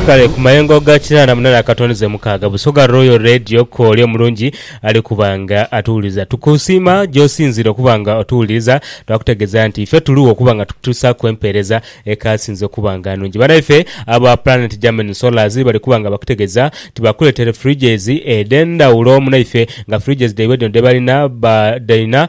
Kale ku mayengo ga kinaana munaana akatoneze mukaaga, Busoga Royal Radio Kooli omulungi ali kuba nga atuwuliriza. Tukusiima gy'osinziire okuba nga otuwuliriza. Twakutegeeza nti ife tuli wo okuba nga tukutuusaaku empeereza ekaasinze okuba nga nnungi. Bannaife aba Planet Germany Solars bali kuba nga bakutegeeza nti baakuleetere fridges edh'endhawulo munaife nga fridges dhaibwe dhino dhe balina badhina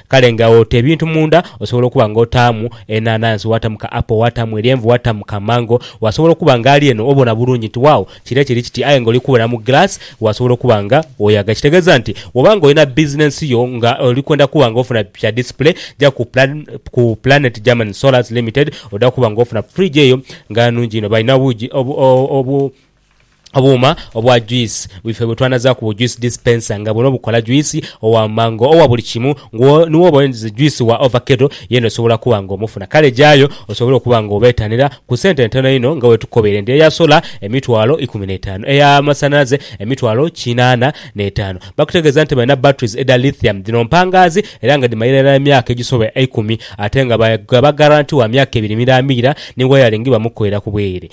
Kale nga ota ebintu munda, osobola okuba nga otaamu enhanhansi, waatamu ka apple, waatamu eryenvu, waatamu ka mango. Wasobola okuba nga ali eno obona bulungi nti wawo kire kiri kiti aye nga oli kubona mu glass wasobola okuba nga oyaga. Kitegeeza nti bwoba nga olina bizinensi yo nga oli kwenda kuba nga ofuna kya display, ja ku ku Planet German Sollars Limited oda kuba nga ofuna fridge eyo nga nungi inho. Balina obugi obu, obu. Obuuma obwa juice bwife bwe twanazaaku bu juice dispenser nga buno bukola juice owa mango, owa buli kimu nga ni woba oyendize juice wa ovakedo yena osobola kuba nga omufuna kale gyayo osobole okuba nga obeetanira ku sente ntono inho nga wetukobeire nti eya sola emitwalo ikumi n'etaanu, eya masanhalaze emitwalo kinaana n'etaanu. Bakutegeeza nti balina batteries edha lithium dhino mpangaazi era nga dhimalira irala emyaka egisoba eikumi ate nga bagaba guarantee wa myaka ebiri miraamiira ni wiring bamukoera ku bweere.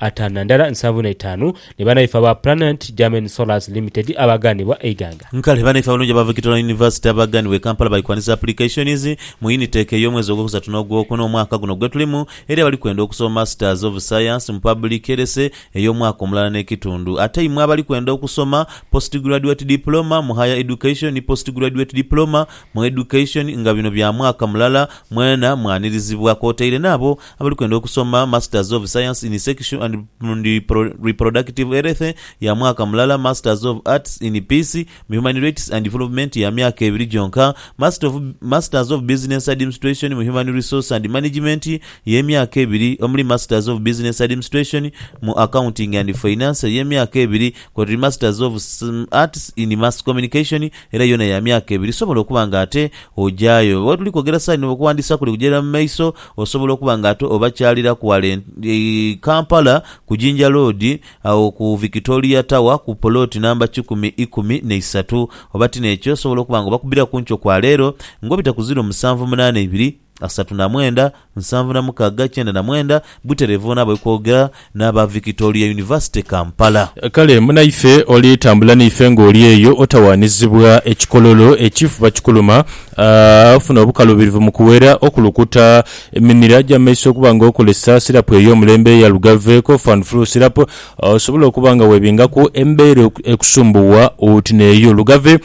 ataanu na ndala nsanvu na itaanu ni banaife aba Planet Germain Solars Limited abaaganibwa e Iganga. Kale banaife abalungi aba Victoria University abaaganibwa e Kampala bali kwanisa applications mu Unitec ey'omwezi ogwokusatu n'ogwokuna omwaka guno gwetulimu eri abali kwenda okusoma Masters of Science mu Public Health ey'omwaka omulala n'ekitundu ate imwe abali kwenda okusoma Postgraduate Diploma mu Higher Education ni Postgraduate Diploma mu Education nga bino bya mwaka mulala mwena mwanirizibwa kwotaire n'abo abali kwenda okusoma Masters of Science in Sexual and Reproductive Health ya mwaka mulala, Masters of Arts in Peace, mu Human Rights and Development ya myaka ebiri gyonka, Masters of Business Admnstration mu Human Resource and Management y'emyaka ebiri omuli Masters of Business Admnstration mu Accounting and Finance ey'emyaka ebiri kwotuli Masters of Arts in Mass Communication era yoona ya myaka ebiri. Sobola okuba nga ate ojayo. Wetuli kwogera saano okuwandiisa kuli kugya irala mu maiso. Osobola okuba nga ate obakyaliraku wala e Kampala ku Jinja Road agho ku Victoria Tower ku poloti namba kikumi ikumi na isatu. Oba ti n'ekyo, osobola okuba nga obakubbira ku nkyo kwa leero ng'obita ku ziro musanvu munaana ibiri, asatu na mwenda, nsanvu na mukaaga, kyenda na mwenda, butereevu bona bwe kwogera. n'aba Victoria University Kampala. Kale munaife oli tambula naife ng'oli eyo otawaanizibwa ekikololo ekifuba kikuluma, ofuna obukalubirivu mu kuwera okulukuta emimira gya mu maiso okuba nga okozesa sirapu ey'omulembe eya Lugave Cough and Flu Syrup, osobole okuba nga weebingaku embeera ekusumbuwa oti n'eyo. Lugave.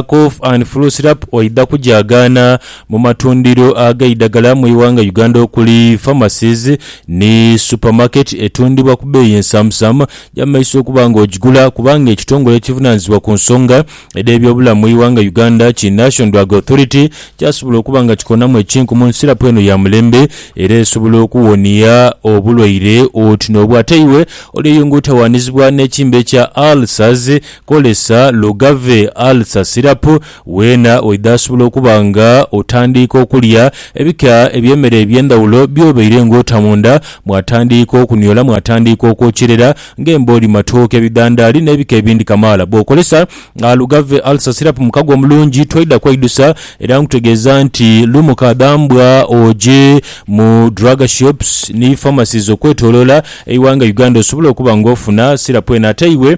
Cough and Flu Syrup oidha kugyagaana mu matundhiro ag'eidhagala mu ighanga Uganda okuli, Pharmacies ni Supermarket etundhibwa ku bbeeyi ensamusamu gy'amaiso okuba nga ogigula kubanga ekitongole ekivunaanyizibwa ku nsonga edh'ebyobulamu mu ighanga Uganda ki Nation Drug Authority kyasobola okuba nga kikonamu ekinkumu ni sirapu eno ya mulembe era esobola okuwonia obulwaire oti n'obwo ate iwe oli eyo nga otawaanizibwa n'ekimbe kya ulcers Kozesa Lugave Ulcer Syrup weena oidha asobola okuba nga otandiika okulya ebika eby'emere eby'endhawulo by'obaire nga ota munda mwatandiika okuniola mwatandiika okwokyerera ng'embooli, matooke, bidhandaali n'ebika ebindi kamaala. Bw'okozesa Lugave Ulcer Syrup mu kago omulungi toidha kweidusa era nkutegeeza nti lumu kadhambwa oje mu drug shops ni pharmacies okwetoloola eighanga Uganda osobole okuba nga ofuna syrup eno ate iwe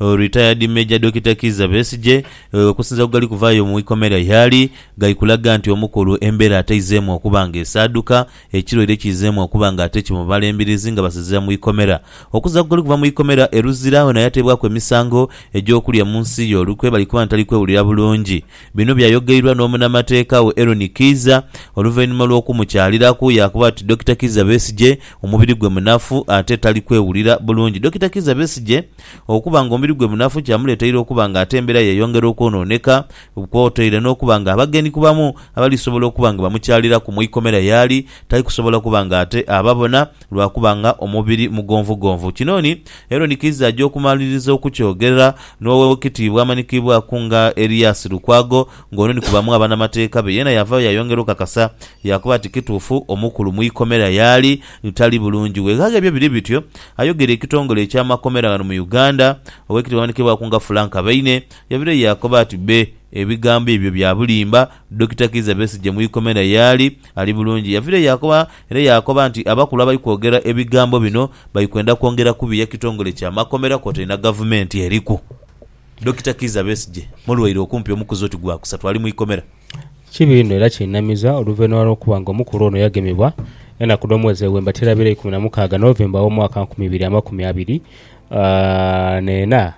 Retired Major Dokita Kizza Besigye okusinzira ku gali kuvaayo mu ikomera yaali gali kulaga nti omukulu embeera ataizeemu okuba nga esaaduka, ekirwaire kiizeemu okuba nga ate kimubala embirizi nga basinziira mu ikomera. Okusinzira ku gali kuva mu ikomera e Luzira ono yateebwaku emisango egy'okulya mu nsi y'olukwe bali kuba nti tali kwewulira bulungi Bino byayogeirwa n'omunamateeka we Eron Kiiza oluvainhuma lw'okumukyaliraku yaakoba ati Dokita Kiiza Besigye omubiri gwe munafu ate tali kwewulira bulungi. Dokita Kiiza Besigye okuba nga omubiri gwe munafu kyamuleteire okuba nga ate embeera yeyongera okwonooneka kwotaire n'okuba nga abagenyi ku bamu abalisobola okuba nga bamukyaliraku mu ikomera yaali Tai kusobola kuba nga ate aba bona, lwa kuba nga omubiri mugonvugonvu. Kino ni Herode kiiza aja okumaliriza okukyogerera, n'owe wekitiibwa amanhikiibwaku nga Elias Lukwago, ng'ono ni ku bamu abanamateeka be. Yeena yavaayo yayongera okakasa, yaakoba ati kituufu omukulu mu ikomera y'ali ni tali bulungi. Weghagha ebyo biri bityo, ayogeire ekitongole eky'amakomera ghano mu Uganda, owekitiibwa amanhikiibwaku nga Frank Baine, yavirayo yaakoba ati bbe ebigambo ebyo bya bulimba, Dokita Kiiza Besigye mu ikomera yaali ali bulungi yaviire yaakoba era yaakoba nti abakulu abali kwogera ebigambo bino bali kwenda kwongera kubiya kitongole kya makomera kwotaire na gavumenti eriku Dokita Kiiza Besigye mulwaire okumpi omukuzi oti gwakusatu ali mu ikomera. Kibi inho era kinamiza oluvainhuma lwokuba nga omukulu ono yagemebwa enaku dhomwezi ewemba teraabira eikumi namukaaga November womwaka nkumi ibiri amakumi abiri n'ena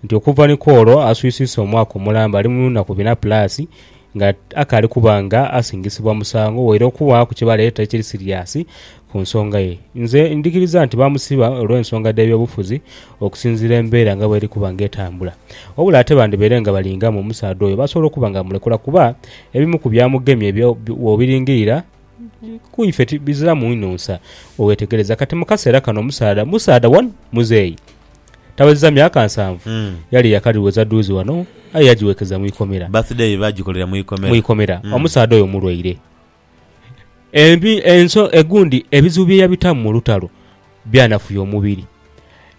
nti okuva ni kwolwo aswisiisa omwaka omulamba ali mu naku bina pulaasi nga akaali kuba nga asingisibwa musango waire okubaaku kye baleeta ekiri siriasi ku nsonga ye. Nze ndhikiriza nti baamusiba olw'ensonga dh'ebyobufuzi okusinziira embeera nga bw'eri kuba nga etambula. Wabula ate bandhibaire nga balingamu omusaadha oyo basobola okuba nga bamulekula kuba ebimu ku byamugemye bw'obiringirira ku ife biziramu inho nsa bwe weetegereza. Kati mu kaseera kano omusaadha musaadha one muzeeyi. Tawezezza myaka nsanvu, yali yakadhiweza dhuuzi ghano aye yagiweekeza mu ikomera. Birthday ye baagikolera mu ikomera. Mu ikomera. Omusaadha oyo mulwaire. Embi, enso, egundi ebizibu bye yabitamu mu lutalo byanafuya omubiri.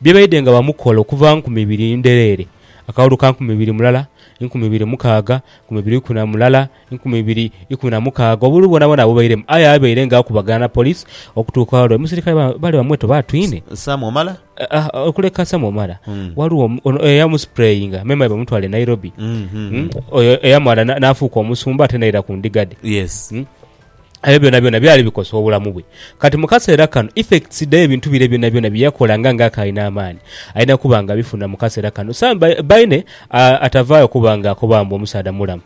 Bye baidhe nga bamukola okuva nkumi ibiri ndhereere, akawolo ka nkumi ibiri mulala, nkumi ibiri mukaaga, nkumi ibiri ikumi na mulala, enkumi ibiri ikumi na mukaaga obululu bwonabwona abubairemu, aye abaire nga akubagana na police okutuuka olwo omusirikale bali bamweta oba atwine. Sam Omala? Okuleka Sam Omala, ghaligho ono eyamusprayinga me mayi bamutwala e Nairobi, oyo eyamala n'afuuka omusumba ate n'aira ku ndiga dhe. Ebyo byonabyona byali bikosa obulamu bwe. Kati mu kaseera kano effects dh'ebintu bire byonabyona bye yakola nga ng'akaayina amaani, alina kuba ng'abifuna mu kaseera kano. Sam Baine atavaayo kuba ng'akoba mbu omusaadha mulamu.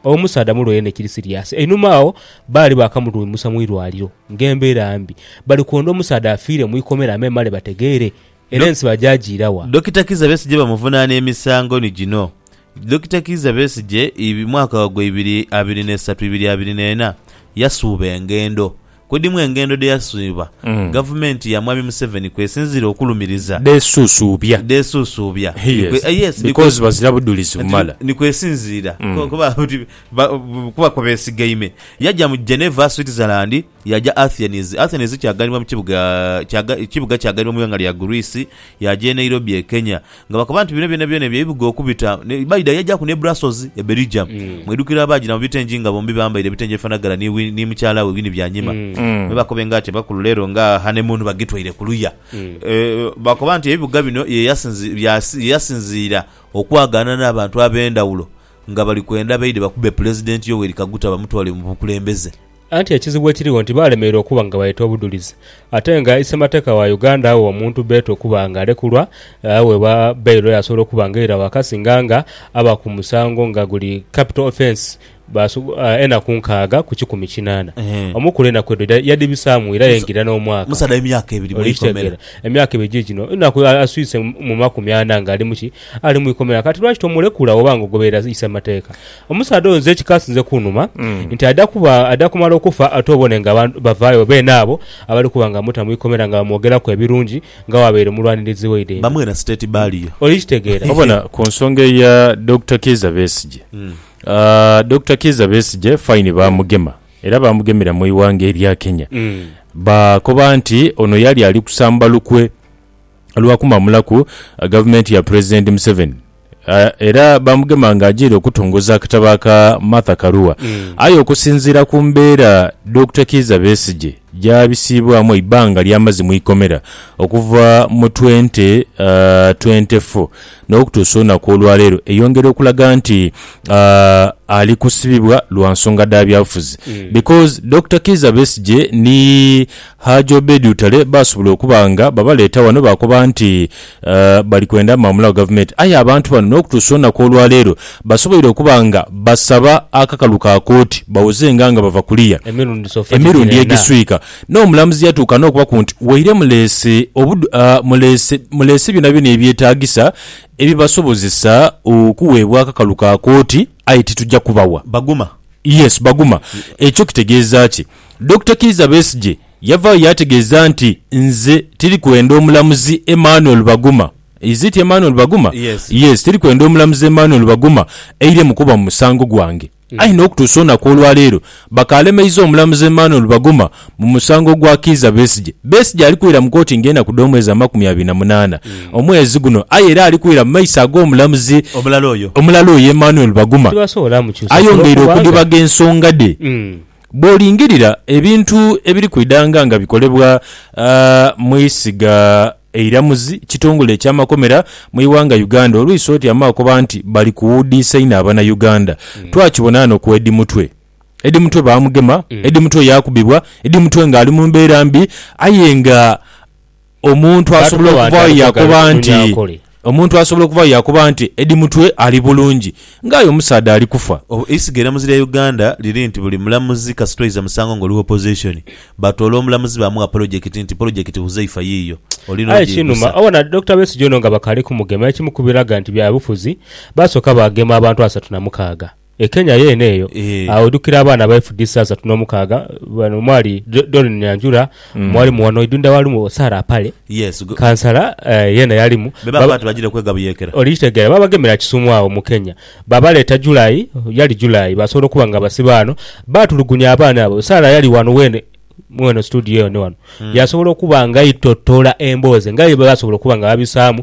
Omusaadha mulwaire ni kiri siriasi. Einhuma agho baali baakamulwimusa mu irwaliro ng'embeera mbi. Bali kwondha omusaadha afiire mu ikomera amemale bategeere era ensi bagyajiira wa. Dokita Kizza Besigye bamuvunaana emisango ni gino Dokita Kizza Besigye, iv, mwaka gwa ibiri abiri n'esatu ibiri abiri n'ena, yasuuba engendo Ku dhimu engendo dhe yaswibwa gavumenti ya Mwami Museveni kwesinziira okulumiriza, Dhesuusuubya. dhesuusuubya, ni kwe- eh, yes, ni kwe- Because bazira budhulizi Nti bumala. ni kwesinziira ku- kuba nti ba- bu- kuba kwe beesigaime. Yaja mu Geneva, Switzerland, yaja Athens. Athens kyaghanibwa mu kibuga kyaga- kibuga kyaghanibwa mu ighanga lya Greece, yaja e Nairobi e Kenya. Nga bakoba nti, Bino byonabyona ebyo ebibuga okubita, ne baidha yaajaku n'e Brassozi, e Belgium. Mwidhukire abaajira mu bitengi nga bombi bambaire ebitengi ebifanagana ni Win, ni mukyala we Winnie Byanyima, me bakobe nga ati abakulu leero nga honeymoon bagitwaire ku luya. E, bakoba nti ebibuga bino ye yasinzi, bya, ye yasinziira okwagaana n'abantu ab'endhawulo nga bali kwenda beidhe bakube Pulezidenti Yoweri Kaguta bamutwale mu bukulembeze. Anti ekizibu ekirigho nti baalemererwa okuba nga baleeta obudhulizi ate nga ise mateeka wa Uganda agha omuntu beeta okuba nga alekulwa agha weba bail oyo asobola okuba nga eira waka singa nga aba ku musango nga guli capital offence enaku nkaaga ku kikumi kinaana omukulu enaku edho yadhibisaamu era yaingira n'omwaka okitegeera emyaka ebiri giigino enaku aswise mu makumi ana nga ali mu ki ali mu ikomera kati lwaki tomulekula woba nga ogoberera ise mateeka Omusaadha oyo nze ekikasinze kunhuma nti aidha kuba aidha kumala okufa ate obone nga abantu bavaayo beene abo abali kuba nga bamuta mu ikomera nga bamwogeraku ebirungi nga bwabaire mulwanirizi waidhe eno. Bamuwe na state burial. Olikitegeera? Obona ku nsonga eya Dokita Kiiza Besigye, Dokita Kiiza Besigye fine baamugema era baamugemera mu ighanga erya Kenya, baakoba nti ono yali ali kusamba lukwe. lwa kumamulaku gavumenti ya Pulezidenti Museveni era baamugema ng'ajiire okutongoza akatabo aka Martha Karua. Aye okusinziira ku mbeera Dokita Kiiza Besigye gy'abisiibwamu eibanga ly'amaze mu ikomera okuva mu twente twente fo n'okutuusa olunaku olwaleero eyongera okulaga nti ali kusibibwa lwa nsonga dha byabufuzi because Dokita Kiiza Besigye ni Haji Obedi Lutale baasobola okuba nga babaleeta ghano baakoba nti bali kwenda maamula wa Gavumenti. Aye abantu bano n'okutuusa olunaku olwaleero basoboire okuba nga basaba akakalu ka kooti bawozenga nga bava kuliya emirundi egiswika. N'omulamuzi yatuuka n'okubaku nti waire muleese muleese byonabyona ebyetaagisa ebibasobozesa okuweebwa akakalu ka kooti aye tituja kubawa. Baguma? Yes, baguma. Ekyo kitegeeza ki? Dokita Kiiza Besigye yavaayo yaategeeza nti, Nze tiri kwenda omulamuzi Emmanuel Baguma, is it Emmanuel Baguma? Yes. Yes, tiri kwenda omulamuzi Emmanuel Baguma eire mu kuba mu musango gwange. Aye n'okutuusa olunaku olwaleero bakaalemeiza omulamuzi Emmanuel Baguma mu musango gwa Kiiza Besigye. Besigye ali kwira mu kooti ng'enaku dh'omwezi amakumi abiri na munaana omwezi guno aye era ali kwira mu maiso ag'omulamuzi Omulala oyo. omulala oyo Emmanuel Baguma Tibasobola mukyusa kuba ayongeire okudhibaga ensonga dhe. Mm. Bw'olingirira ebintu ebiri kwidhanga nga bikolebwa mu isiga eiramuzi kitongole eky'amakomera mu ighanga Uganda olwisa oti amagha koba nti bali kuwudiisa inho Abanayuganda. Twakibona ghano ku Eddie Mutwe. Eddie Mutwe baamugema, Eddie Mutwe yaakubibwa, Eddie Mutwe ng'ali mu mbeera mbi aye nga. Omuntu asobola okuvaayo yaakoba nti, omuntu asobola okuvaayo yaakoba nti Eddie Mutwe ali bulungi nga aye omusaadha ali kufa. Eisiga eramuzi lya Uganda liri nti buli mulamuzi kasita oiza musango nga oli Opposition, batoola omulamuzi baamugha polojekiti nti polojekiti Huzaifa yiiyo, oli Aye kinuma n'ogyeigusa. obona Dokita Besigye ono nga bakaali kumugema ekimu ku biraga nti byabufuzi, baasooka baagema abantu asatu na mukaaga. E Kenya yeene eyo aghedhukira abaana ba FDC asatu n'omukaaga. Bano mwali Doreen Nyanjura, mwalimu wano Idunda Walumu, Sarah Apale, kansala yeena yalimu. Be baakoba nti bajiire kwega buyeekera. Olikitegeera. Baabagemera Kisumu agho mu Kenya. Baabaleeta July, yali July, baasobola okuba nga basiba ghano. Baatulugunya abaana abo. Sarah yali wano weene, mweno situdiyo eno wano, yaasobola okuba nga aitotola emboozi nga ye bye baasobola okuba nga babisaamu.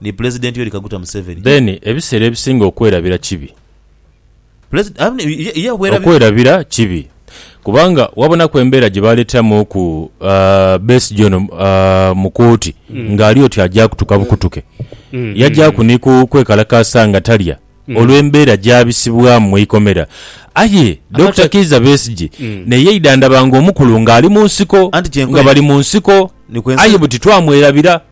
ni Pulezidenti Yoweri Kaguta Museveni. Then ebiseera ebisinga okwerabira kibi. Pulezid. Amen. Ye obwerabira. Okwerabira kibi kubanga wabonaku embeera gye baaleeteramuuku Besigye ono mu kooti ng'ali oti aja kutuka bukutuke. Yajaaku ni ku kwekalakaasa nga talya olw'embeera gy'abisibwamu mu ikomera. Aye Dokita Kiiza Besigye naye yaidha ndaba ng'omukulu ng'ali mu nsiko, nga bali mu nsiko aye buti twamwerabira.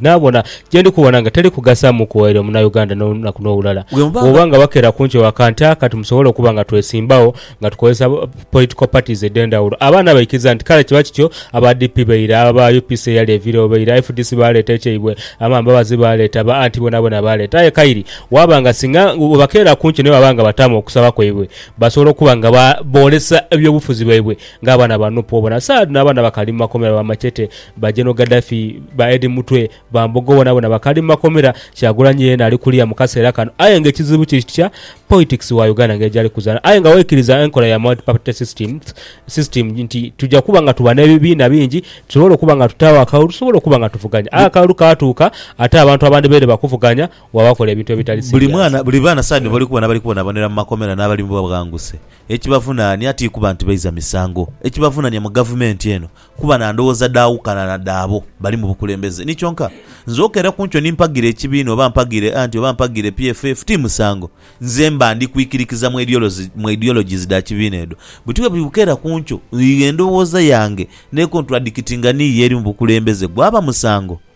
Naabona gye ndi kubona nga teri kugasa mu kuwaire Munauganda n'olunaku n'olulala. Bw'oba nga bakeera kunkyo wa kantu aka timusobola okuba nga twesimbagho nga tukozesa political parties edh'endhawulo. Abaana baikiriza nti kale kiba kityo, aba DP baira, aba UPC eyali eviirewo baira, fdc baaleeta ekyaibwe, aba Mbabazi baaleeta, ba Anti boonaboona baaleeta. Aye Kairi, waaba nga singa bwebakeera kunkyo ni baba nga bataamu okusaba kwaibwe, basobola okuba nga boolesa eby'obufuzi byaibwe Ng'abaana ba Nup obona Saad n'abaana bakali mu makomera ba Machete, ba General Gaddafi, ba Eddie Mutwe, ba Mbogo bonabona bakali mu makomera, Kyagulanyi yeena ali kuliya mu kaseera kano aye nga ekizibu kiri kitya politics wa Uganda nga yejali kuzaana aye nga waikiriza enkola ya multi party systems system nti tuja kuba nga tuba n'ebibiina bingi tusobole okuba nga tutaagho akalulu tusobole okuba nga tuvuganya aye akalulu kaatuuka ate abantu abandibaire bakuvuganya Wa bakola ebintu ebitali serious. Buli baana saagha dhino bali kubona abali kubonabonera mu makomera n'abali mu bwaghanguse. Ekibavunaania ti kuba nti baiza misango. Ekibavunaania mu gavumenti eno kuba na ndhoghoza dhaawukana na dhaabo bali mu bukulembeze. Ni kyonka, nze okeera ku nkyo ni mpagira ekibiina oba mpagira anti oba mpagira PFF ti musango. Nze mba ndi kwikirikiza mu ideologies dha kibiina edho. Buti bwe bukeera ku nkyo, endhoghoza yange n'ekonturadikitinga n'iyo eri mu bukulembeze, gwaba musango?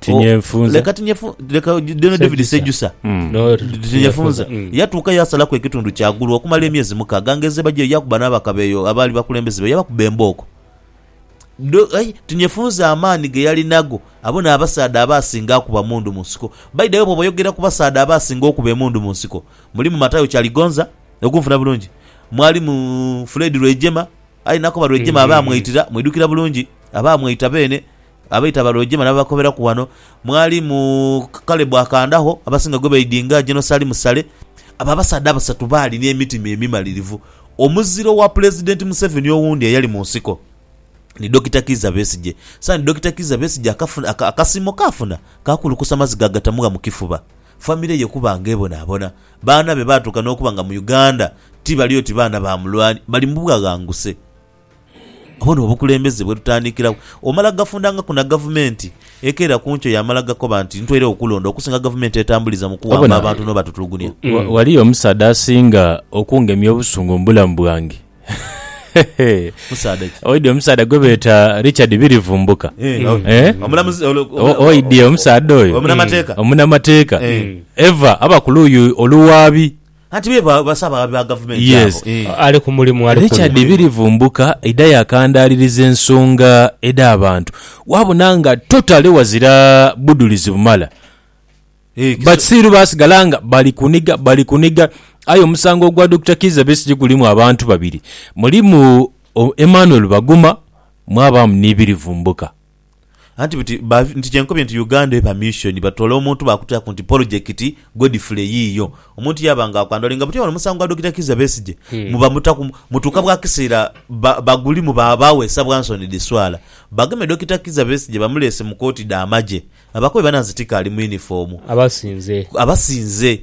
Tinyefunza. leka tinyefu leka deno david sejusa Mm. No, tinyefunza Mm. yatuuka yasalaku ekitundu kyagulu okumala emyezi mukaaga nga ezeba gyeyo yakuba n'abakabeeyo abaali bakulembeze be yabakuba embooko Do- ai, tinyefunza amaani ge yali nago abo n'abasaadha abaasinga akuba mundu mu nsiko baidawe bwoba oyogera ku basaadha abaasinga okuba emundu mu nsiko mulimu matayo kyaligonza okunfuna bulungi mwalimu fred lwejema aye nakoba lwejema abaamwaitira mwidukira bulungi abaamwaita beene Abaita abalweje male ababakoberaku wano mwali mu Kalebu akandagho, abasinga gwe baidinga Jenosalimu Sale. Abo abasaadha abasatu baali n'emitima emimalirivu. Omuzira owa Pulezidenti Museveni owundi eyali mu nsiko ni Dokita Kiiza Besigye. Saani Dokita Kiiza Besigye akafuna akasiimo kaafuna ka kulukusa maziga agatamugha mu kifuba, famire ye kuba ng'ebonaabona. Baana be baatuuka n'okuba nga mu Uganda ti bali oti baana ba mulwani, bali mu bwaghanguse. Obwo ni obukulembeze bwe tutandikiragho. Omala gafundhangaku na gavumenti ekeera ku nkyo yaamala gakoba nti ntweiregho kulonda okusinga gavumenti etambuliza mu kuwamba abantu n'obatutulugunia. Ghaliyo omusaadha asinga okungemya obusungu mu bulamu bwange. Musaadha ki? Oidhi omusaadha gwe beeta Richard Birivumbuka? Oidhi omusaadha oyo? Omunamateeka. Ever aba ku luuyi oluwaabi. Anti be ba- basaba ababi ba gavumenti Yes, abo. eh. Ali ku mulimu ali kunu. Richard Birivumbuka idha yakandaaliriza ensonga edh'abantu waabona nga totally wazira budhulizi bumala. Eh, kiso- Basiiru baasigala nga bali kuniga bali kuniga aye omusango ogwa Dokita Kizza Besigye gulimu abantu babiri. Mulimu o, Emmanuel Baguma mwabaamu ni Birivumbuka. Anti buti ba nti kyenkobye nti Uganda eba mission batoola omuntu baakutiraku nti polojekiti Godfrey yiiyo. Omuntu yaaba nga akwandolinga buti ono musango gwa Dokita Kizza Besigye muba mutaku mutuuka bwa kiseera ba bagulimu ba baweesa bwa nsoni dhiswala. Bageme Dokita Kizza Besigye bamuleese mu kooti dha magye. Abakobe banansi tikaali mu yunifoomu. Abasinze. Abasinze.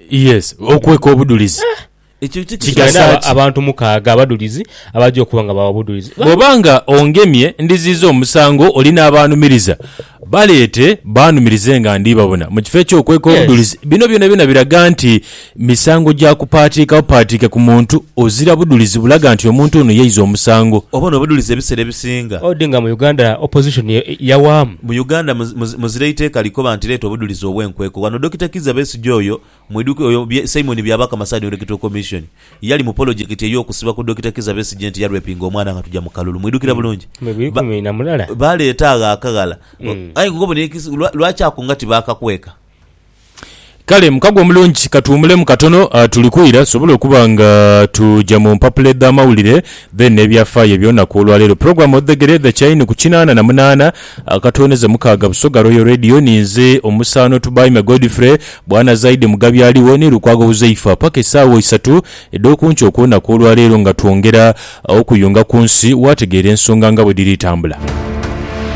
Yes, okweka obudulizi kigasa ki? Abantu mukaaga abadulizi abaja okuba nga bawa obudulizi. Bw'oba nga ongemye, ndiziiza omusango oli n'abaanumiriza. Baleete baanumirize nga ndi babona. Mu kifo eky'okweka obudulizi, bino byonabyona biraga nti misango gya kupaatiika bupaatiike ku muntu ozira budulizi bulaga nti omuntu ono yaiza omusango. Oba n'obudulizi ebiseera ebisinga. Odi nga mu Uganda opposition yawaamu. Mu Uganda muzira eiteeka likoba nti leeta obudulizi obw'enkweko. Wano Dokita Kizza Besigye. Omusajja oyo, mwidhukire oyo bye, Simon Byabakama Side on Electoral Commission, yali mu polojekiti ey'okusiba ku Dokita Kizza Besigye nti yalwepinga omwana nga tugya mu kalulu. Mwidhukira bulungi? Ba, baleeta agho akaghala. Mm. Aye nga obona ekisi, lwa, lwaki ako nga tibaakakweka? Kale mukago omulungi katuwumulemu katono ah, tuli kwira tusobole okuba nga tuja mu mpapula edh'amawulire then n'ebyafaayo eby'olunaku olwaleero. Program odhegere The Chain ku kinaana na munaana. Akatwoneze mukaaga Busoga Royal Radio ni nze omusaano Tubaime Godfrey, Bwana Zaidi Mugabi aligho ni Lukwago Huzaifa paka esaawa isatu edh'okunkyo okw'olunaku olwa leero nga twongera okuyunga ku nsi waategeera ensonga nga bwe dhiri tambula.